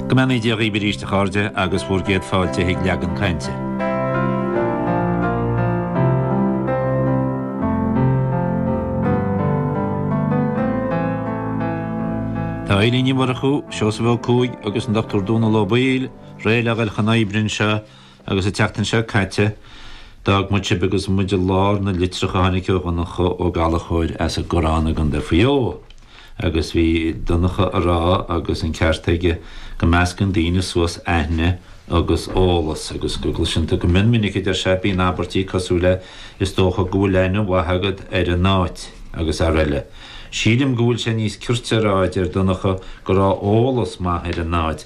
Go mbeannaí Dia dhaoibh arís a chairde agus bhur gcéad fáilte chuig Leagan Cainte. Tá Eibhlín Ní Mhurchú, Seosamh Ó Cuaig agus an Dr Dónal Ó Baoill réidh le dhul chun oibre anseo Agus an tseachtain seo caite, d'fhág muid sibh agus muid i lár na litreach a tháinig ó Dhonncha Ó Gallachóir as an gCorrán i gContae Mhaigh Eo. Agus bhí Donncha a rá, agus an ceart aige, go meascann daoine suas aithne agus eolas, agus go gcloiseann tú go mion minic, a deir sé, bíonn abairtí cosúil le is dócha go bhfuil aithne mhaith agat ar an áit, agus rl. Sílim go bhfuil sé níos cirte a rá, a deir Donncha, go raibh eolas maith ar an áit,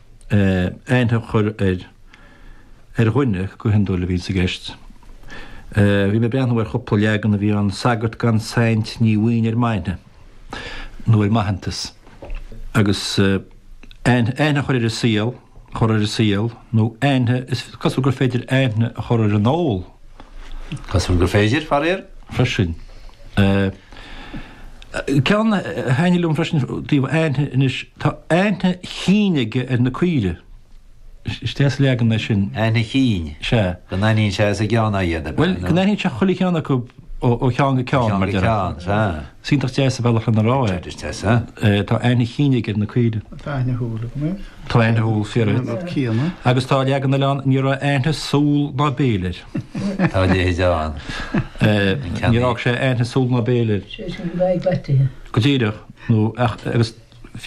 aithne a chur air, ar dhuine go hiondúil a bhíonn sa gceist. Bhí mé ag breathnú ar chúpla leagan a bhí ann, Sagart gan saint ní bhíonn ar m'aithne, nó ar m'aitheantas. Agus aithne a chur ar an saol, a chur ar an saol, nó aithne, is cosúil gur féidir aithne a chur ar an ól. Cosúil gur féidir, faraor, freisin. Ceann a thaitnigh liom freisin i dtaobh aithne anois, tá aithne chinn aige ar na caoirigh. Is deas leagan é sin. Aithne chinn? Sea. Go n-aithníonn sé as a gceann iad, ab ea? Bhuel, go n-aithníonn sé chuile cheann acu ó cheann go ceann, mar deirtear. Ó cheann go ceann, sea. Is iontach deas an bealach lena rá é. Is deas é. Tá aithne chinn aige ar na caoirigh. Tá aithne shúl agam air. Tá aithne shúl fíor air. Agus tá leagan eile ann, ní raibh aithne súl ná béil air. Tá a leithéid ann. Níor fhág sé aithne súl ná béil air. Sé sin go bhfaighidh bait uirthi. Go díreach, nó ach agus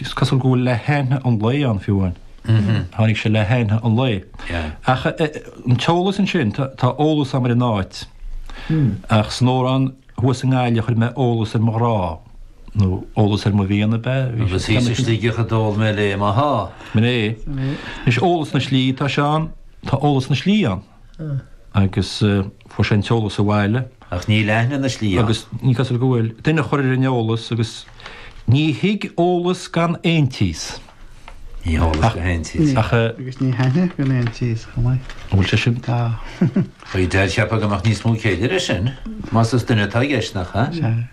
is cosúil go bhfuil le haithne an lae ann fiú ann. Tháinig sé le haithne an lae. Ach an t-eolas ansin, tá eolas agam ar an áit, ach san amhrán thuas i nGaillimh chuir mé eolas ar mo ghrá, nó eolas ar mo mhian, ab ea? Agus thíos i Sligeach a d'ól mé léi mo sháith! Mné. Anois eolas na slí, tá sé ann, tá eolas na slí ann. agus fuair sé an t-eolas abhaile. Ach níl aithne na slí ann. Agus ní cosúil go bhfuil. Duine a chur ar an eolas agus ní thig eolas gan aontíos. Ní eolas gan aontíos. Ach. Agus ní haithne gan aontíos chomh maith. An bhfuil sé sin? Tá. Bhuel, cheapfá go mbeadh níos mó céille leis sin. Más is duine atá i gceist, nach ea? Sea.